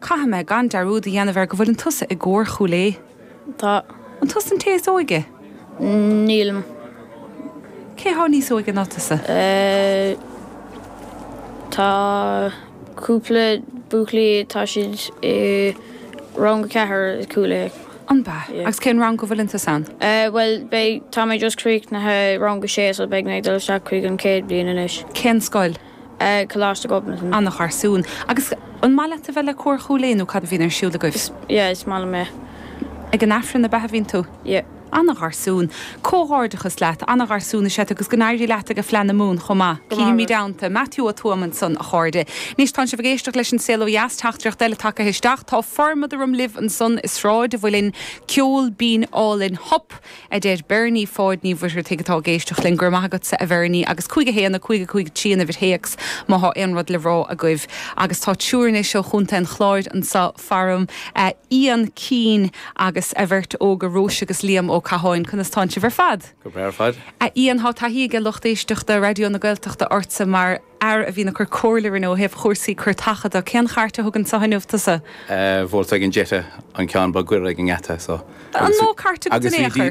Caithfidh mé gan dearúd a dhéanamh air go bhfuileann tusa i gCór Chúil Aodha. Tá. An tusa an té is óige? Nílim. Cé thá níos óige ná tusa? Tá cúpla buachaillí, tá siad i rang a ceathair i Cúil Aodha. An b'ea? Agus cén rang go bhfuileann tusa ann? Bhuel, beidh, tá mé just críochnaithe rang a sé so beidh mé ag dul isteach chuig an chéad bhliain anois. Cén scoil? ag Coláiste Ghobnatan. An-gharsún. Agus an maith leat a bheith le Cór Chúil Aodha nó cad a bhíonn ar siúl agaibh? Is, yeah, is maith liom é. Ag an Aifreann, an b'ea, a bhíonn tú? Yeah. An-gharsún. Comhghairdeachas leat. An-gharsún is ea tú agus go n-éirí leat age Fleadh na Mumhan chomh maith. Go maith agat. Cífimid ann tú. Matthew Ó Tuama ansan a chairde. Anois tánn sibh ag éisteacht leis an Saol Ó Dheas, teachtaireacht eile tagaithe isteach, Tá formad orm libh ansan i Sráid an Mhuilinn, ceol binn álainn, hup! a deir Bernie Pháid Ní Mhuircheartaigh atá ag éisteacht linn. Go raibh maith agatsa, a Bhernie. Agus 5 1 5 5 3 an uimhir théacs má thá aon rud le rá agaibh. Agus tá triúr anois ó Chontae an Chláir anso faram, Ian Keane agus a bheirt óga, Róise agus Liam Ó Catháin. Conas tánn sibh ar fad? Go breá ar fad. A Ian, thá taithí age lucht éisteachta Raidió na Gaeltachta ortsa mar. fhear a bhíonn ag cur comhairle orainn ó thaobh chúrsaí cairteacha de. Cén chairt a thug anso inniu tusa? Volkswagen Jetta an ceann ba ghaire ag an ngeata so. An mó cairt agat in aon chor?